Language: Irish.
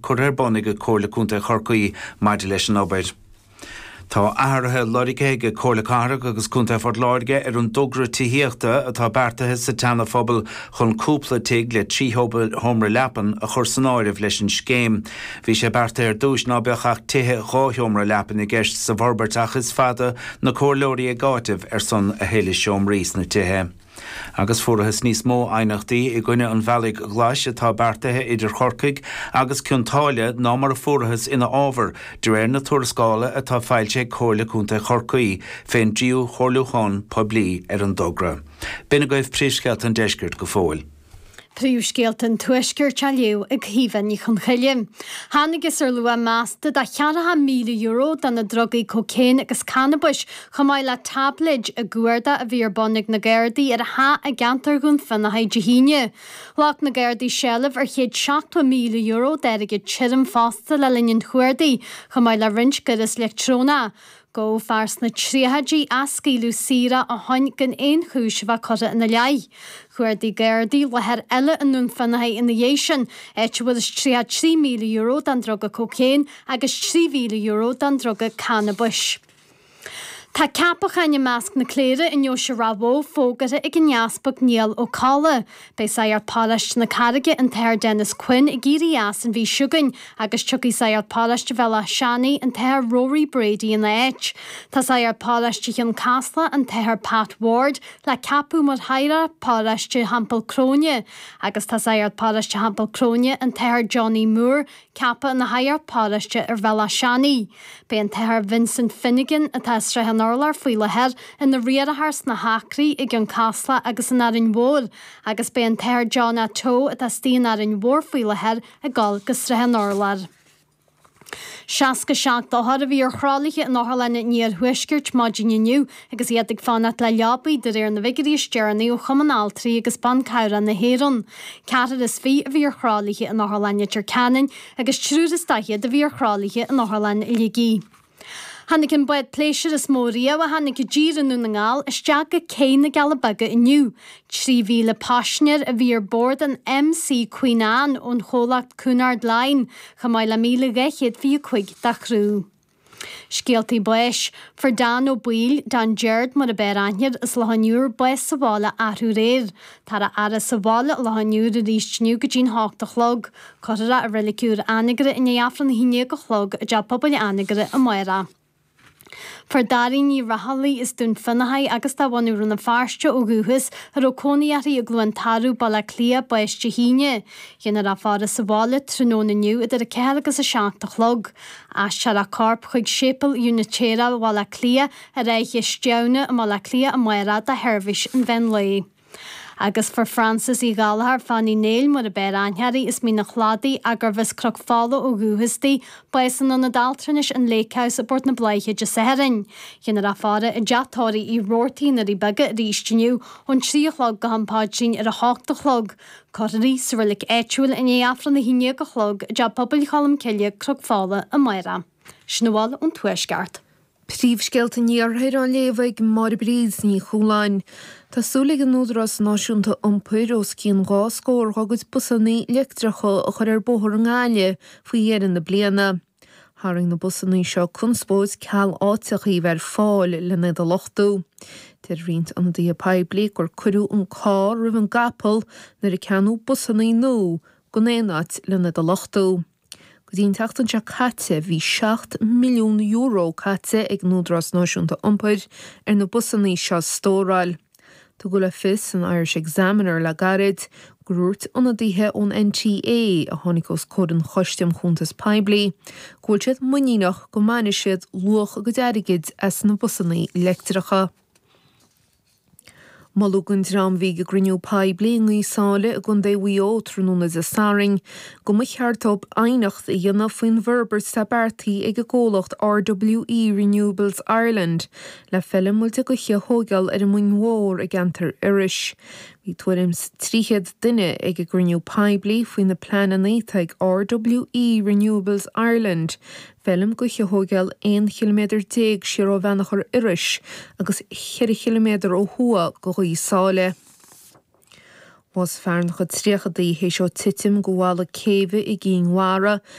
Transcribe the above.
curtha ar bun ag Comhairle Contae Chorcaí maidir leis an obair. Tá athruithe loirgthe ag Comhairle Cathrach agus Contae Phort Láirge ar an dtogra tithíochta atá beartaithe sa tSeana Phobal chun cúpla tigh le trí sheomra leapan a chur san áireamh leis an scéim. Bhí sé beartaithe ar dtúis ná beadh ach tithe dhá sheomra leapan i gceist sa bhforbairt ach is fada na comhairleoirí ag áiteamh ar son a thuilleadh seomraí sna tithe. Agus fuarathas níos mó aighneachtaí i gcoinne an bhealaigh ghlais atá beartaithe idir Corcaigh agus Cionn tSáile ná mar a fuarathas ina fhábhar, de réir na tuarascála atá foilsithe ag Comhairle Contae Chorcaí fén dtríú chomhairliúchán poiblí ar an dtogra. B'in agaibh príomhscéalta an deiscirt go fóill. Príomhscéalta an Tuaiscirt á léamh ag Caoimhe Ní Chonchoille. Thángthas ar luach measta de cheathracha míle euro de na drugaí cócaon agus cannabais, chomh maith le táibléid, i gcuardach a bhí ar bun ag na Gardaí ar theach i gceantar Dhún Fionnachaidh Dé hAoine. Ghlac na Gardaí seilbh ar chéad seachtó míle euro d'airgead tirim fosta le linn an chuardaigh, chomh maith le roinnt gaireas leictreonach. Gabhadh fear sna tríochaidí ach scaoileadh saor é ó shin gan aon chúis a bheith curtha ina leith. Chuardaigh Gardaí láthair eile i nDún Fionnachaidh ina dhiaidh sin, áit a bhfuarthas tríocha trí míle euro den druga cocaine agus trí mhíle euro den druga cannabais. Tá ceapacháin i measc na cléire i ndeoise Ráth Bhoth fógartha ag an Easpag Niall Ó Cadhla. Beidh sagart paróiste na Carraige an tAthair Denis Quinn ag éirí as an mhí seo chugainn agus tiocfaidh sagart paróiste Bhéal Átha Seanaidh an tAthair Rory Brady ina áit. Tá sagart paróiste Chionn Caslach an tAthair Pat Ward le ceapadh mar shagart paróiste Theampall Cróine agus tá sagart paróiste Theampall Cróine an tAthair Johnny Moore Ceapadh ina shagart paróiste ar Bhéal Átha Seanaidh. Beidh an tAthair Vincent Finnegan, atá i Srath an Urláir faoi láthair, ina riarthóir sna hAcraí, i gCionn Caslach agus in Árainn Mhór agus beidh an tAthair John A Teo, atá istigh in Árainn Mhór faoi láthair, ag dul go Srath an Urláir. Seasca seacht othar a bhí ar thralaithe in otharlanna an iarthuaiscirt maidin inniu Agus iad ag fanacht le leabaidh, de réir na bhfigiúirí is deireanaí ó Chumann Altraí agus Ban Cabhrach na hÉireann, ceathrar is fiche a bhí ar thralaithe in Otharlann Leitir Ceanainn agus triúr is daichead a bhí ar thralaithe in Otharlann Shligigh. Tháinig an bád pléisiúir is mó riamh a tháinig i dtír i nDún na nGall isteach go cé na gCealla Beaga inniu. 3,000 paisinéir a bhí ar bord an MC Queen Anne ón chomhlacht Cunard Line, chomh maith le míle dhá chéad fiche cuig dá chriú. Scéaltaí Báis, Fuair Dan Ó Baoill, Dan Jeairt mar ab fhearr aithne air as Loch An Iúir, bás sa bhaile athrú aréir. Táthar á fhaire sa bhaile i Loch An Iúir arís inniu go dtí'n h-ocht a chlog. Cuirfear é i Reilig Úr Anagaire i ndiaidh Aifreann a haon déag a chlog i dTeach Pobail Anagaire amárach Fuair Dáiríne Ní Raghallaigh as Dún Fionnachaidh agus de bhunadh Rann na Feirste ó dhúchas, a raibh cónaí uirthi i gCluain Tarbh, Baile Átha Cliath, bás Dé hAoine. Dhéanfar a faire sa bhaile tráthnóna inniu idir a ceathair agus a seacht a chlog. Aistreofar a corp chuig Séipéal Úinitéireach Bhaile Átha Cliath ar Fhaiche Stiabhna i mBaile Átha Cliath amárach do sheirbhís an mheán lae. Agus fuair Frances Uí Ghallchóir, Fanny Néill, mar ab fhearr aithne uirthi as Mín an Chladaigh, agus arbh as Croc Fola ó dhúchas di, bás san ionad altranais an Lake House i bPort na Bláiche Dé Sathairn. Dhéanfar a faire i dteach tórraimh Uí Rabhartaigh na nDoirí Beaga arís inniu, ón trí a chlog go ham Paidrín ar a hocht a chlog. Cuirfear í sa reilig áitiúil i ndiaidh Aifreann 11 a chlog, i dTeach Pobail Cholm Cille, Croc Fola, amárach. Sin a bhfuil ón Tuaisceart. Príomhscéalta an Iarthair á léamh ag Máire Bríd Ní Chualáin. Tá súil ag an Údarás Náisiúnta Iompair os cionn dhá scór dhá gcuid busanna leictreacha a chur ar bóthar i nGaillimh faoi dheireadh na bliana. Tharraing na busanna seo conspóid, ceal áiteacha a bheith ar fáil len iad a luchtú. Deir roinnt ionadaithe poiblí gur cuireadh an carr roimh an gcapall nuair a ceannaíodh busanna nua gan aon áit len iad a luchtú. Go dtí an tseachtain seo caite, bhí €7 milliún caite ag an Údarás Náisiúnta Iompair ar na busanna seo a stóráil. Tugadh le fios san Irish Examiner le gairid gur dhúirt ionadaithe ón NTA, a tháinig os comhair an Choiste um Chuntais Phoiblí, go bhfuil siad muiníneach go mbainfidh siad luach a gcuid airgid as na busanna leictreacha. Moladh don dream a bhí ag cruinniú poiblí i nGaoth Sáile i gcontae Mhaigh Eo tráthnóna Dé Sathairn go mba cheart dóibh aighneacht a dhéanamh faoin bhforbairt atá beartaithe ag an gcomhlacht RWE Renewables Ireland le feilm muilte gaoithe a thógáil ar an Muing Mhór i gceantar Iorrais. Bhí tuairim 's trí chéad duine ag an gcruinniú poiblí faoi na pleananna atá ag RWE Renewables Ireland feilm ghaoithe a thógáil aon chiliméadar déag siar ó Bheannchar Iorrais agus cheithre chiliméadar ó thuaidh de Ghaoth Sáile. Bhásaigh fear ina chuid tríochaidí théis dhó titim de bhalla céibhe i gCinn Mhara